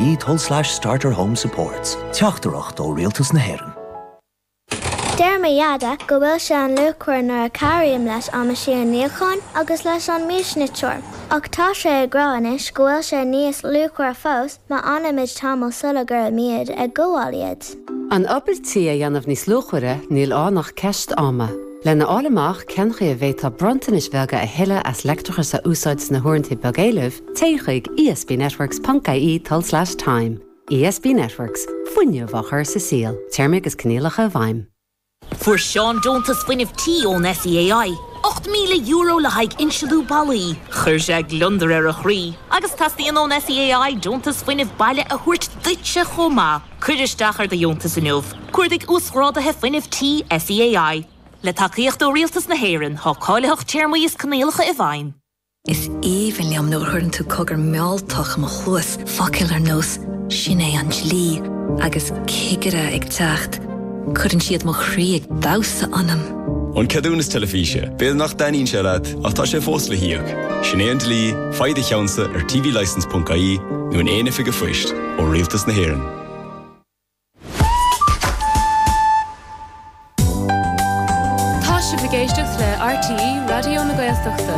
Tul-slais starter home supports. Teachtaireacht ó Rialtas na hÉireann. Deir mo Dheaide go bhfuil sé an-luachmhar nuair a chabhraím leis an meaisín níocháin agus leis an miasniteoir. Ach tá sé ag rá anois go bhfuil sé níos luachmhaire fós má fhanaimid tamall sula gcuirimid ag gabháil iad. An obair tí a dhéanamh níos luachmhaire, níl ann ach ceist ama. Lena fháil amach cén chaoi a bhféadfá bronntanais bhreise a thuilleadh as leictreachas a úsáid sna huaireanta beagéilimh, téigh chuig ESBnetworks ponc ie tul-slais time. ESB Networks, fuinneamh á chur sa saol. Téarmaí agus coinníollacha i bhfeidhm. Fuair Seán deontas fuinnimh tí ón SEAI, €8,000 le haghaidh insealú ballaí. Chuir sé gliondar ar a chroí agus teastaíonn ón SEAI deontas fuinnimh baile a thabhairt duitse chomh maith. Cuir isteach ar do dheontas inniu! Cuardaigh Uasghráduithe Fuinnimh Tí SEAI. Le tacaíocht ó Rialtas na hÉireann, tá cáilitheacht téarmaí is coinníollacha i bhfeidhm. Is aoibhinn liom nuair a chuireann tú cogar mealltach i mo chluas, focail ar nós 'Sin é an dlí' agus 'Cigire ag teacht', cuireann siad mo chroí ag damhsa ionam. An ceadúnas teilifíse. B'fhéidir nach dtaitníonn sé leat, ach tá sé fós le híoc. Sin é an dlí, faigh do cheannsa ar tvlicense.ie nó in aon oifig an phoist, ó Rialtas na hÉireann. Tá sibh ag éisteacht le RTÉ Raidió na Gaeltachta.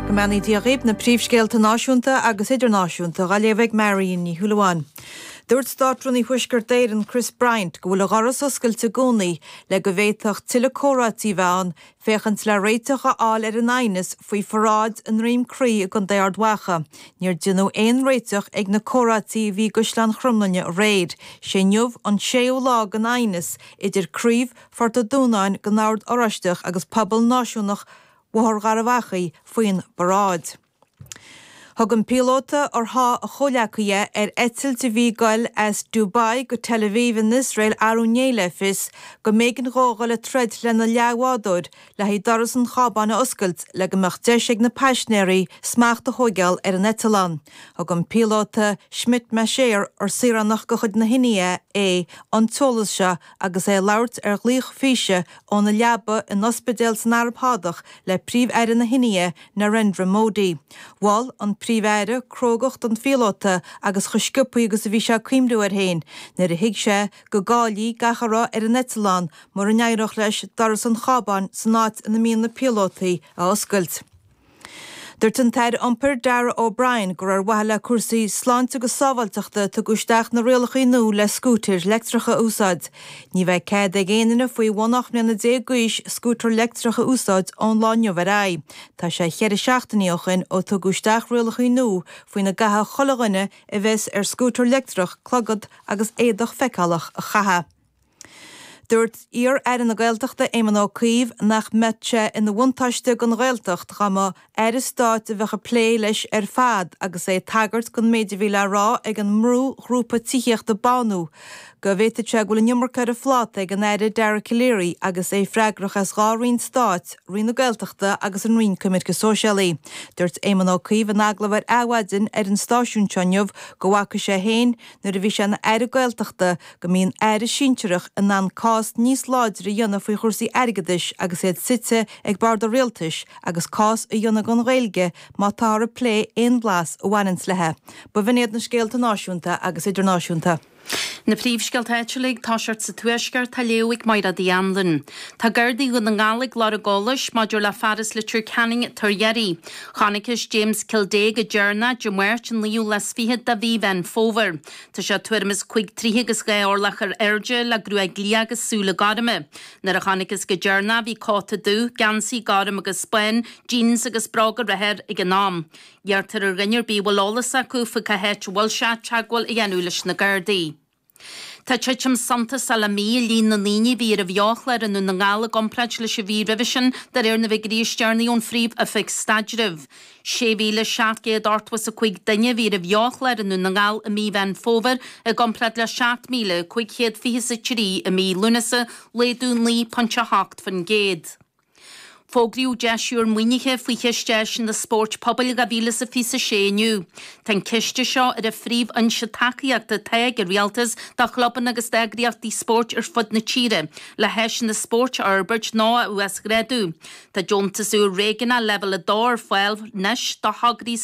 Go mbeannaí Dia dhaoib na príomhscéalta náisiúnta agus idirnáisiúnta á léamh ag Marian Ní Shúilleabháin. Dúirt Státrúnaí Thuaisceart Éireann Chris Bryant go bhfuil a dhoras oscailte i gcónaí le go bhféadfadh tuilleadh comhráití a bheith ann féachaint le réiteach a fháil ar an aighneas faoi pharáid i nDroim Crí i gcontae Ard Mhacha. Níor déanadh aon réiteach ag na comhráití a bhí i gCaisleán Chromghlinne aréir. Sé inniu an séú lá den aighneas idir craobh Phort a' Dúnáin den Ord Oráisteach agus pobal náisiúnach Bhóthar Gharbh Achaidh faoin bparáid. Thug an píolóta ar sháigh a chomhleacaí é ar eitilt a bhí ag goil as Dubai go Tel Aviv in Iosrael arú inné le fios go mb'éigean dó dul ag troid lena leathbhádóir le haghaidh doras an chábáin a oscailt le go mbeadh deis ag na paisnéirí smacht a thóigeáil ar an eitleán. Thug an píolóta Schmidt-Masheer ar saoránach de chuid na hIndia é an t-eolas seo Agus é ag labhairt ar ghlaoch físe óna leaba in ospidéal san Araib Shádach le Príomh-Aire na hIndia, Narendra Modi, mhol an Príomh-Aire crógacht an phíolóta agus chomh sciopthaí agus a bhí sé ag cuimhniú air féin nuair a thuig sé go gcaillfí gach a raibh ar an eitleán mura n-éireodh leis doras an chábáin san áit ina mbíonn na píolótaí a oscailt. Dúirt an tAire Iompair, Darragh O'Brien, gur ar mhaithe le cúrsaí sláinte agus sábháilteachta a tugadh isteach na rialachaí nua le scútair leictreacha a úsáid. Ní bheidh cead ag aon duine faoi bhun 18 mbliana d'aois scútar leictreach a úsáid ón lá inniu ar aghaidh. Tá sé cheithre seachtainí ó shin ó tugadh isteach rialachaí nua faoina gcaithfidh chuile dhuine a bheas ar scútar leictreach clogad agus éadach feiceálach a chaitheamh. Dúirt iar-aire na Gaeltachta Éamon Ó Cuív nach mbeadh sé ina bhuntáiste don Ghaeltacht dá mba aire stáit a bheadh ag plé leis ar fad agus é ag tagairt don méid a bhí le rá ag an mbrúghrúpa tithíochta BÁNÚ go bhféadfadh sé go bhfuil an iomarca ar a phláta ag an Aire Dara Calleary agus é freagrach as dhá roinn stáit, Roinn na Gaeltachta agus an Roinn Coimirce Sóisialaí. Dúirt Éamon Ó Cuív in agallamh ar Adhmhaidin ar an stáisiún seo inniu go bhfaca sé féin, nuair a bhí sé ina aire Gaeltachta, go mbíonn aire sinsearach in ann cás níos láidre a dhéanamh faoi chúrsaí airgeadais agus iad suite ag bord an rialtais agus cás a dhéanamh don Ghaeilge má táthar ag plé aon bhlas a bhaineanns léithi. B'in iad na scéalta náisiúnta agus idirnáisiúnta. Na príomhscéalta áitiúla ag tosacht sa Tuaisceart, dá léamh ag Máire Uí Anluain. Tá Gardaí Dhún na nGall ag lorg eolais maidir le fear as Leitir Ceanainn atá ar iarraidh. Chonacthas James Kildea go deireanach, Dé Máirt, an 29ú lá de Mhí Mheán Fómhair. Tá sé tuairim is cúig troithe agus dhá orlach ar airde, le gruaig liath agus súile gorma. Nuair a chonacthas go deireanach é bhí cóta dubh, geansaí gorm agus bán, jeans agus bróga reatha air ag an am. Iarrtar ar dhuine ar bith a bhfuil eolas acu faoi cá háit a bhfuil sé, teagmháil a dhéanamh leis na Gardaí. Tá titim suntasach le mí i líon na ndaoine a bhí ar an bheochlár i nDún na nGall i gcomparáid leis an mhí roimhe sin, de réir na bhfigiuirí is deireanaí ón Phríomh-Oifig Staidrimh. 6,785 duine a bhí ar an bheochlár i nDún na nGall i mí Mheán Fómhair i gcomparáid le 7,523 i mí Lúnasa, laghdú 9.8%. Fógraíodh deis úr maoinithe faoi Chiste Áiseanna Spóirt Pobail 2026 inniu. Tá an ciste seo ar an phríomhfhoinse tacaíochta atá ag an Rialtas do chlubanna agus d'eagraíochtaí spóirt ar fud na tíre le háiseanna spóirt a fhorbairt nó a uasghrádú. Tá deontas úr Réigiúnach Leibhéal 2 ar fáil anois do thograí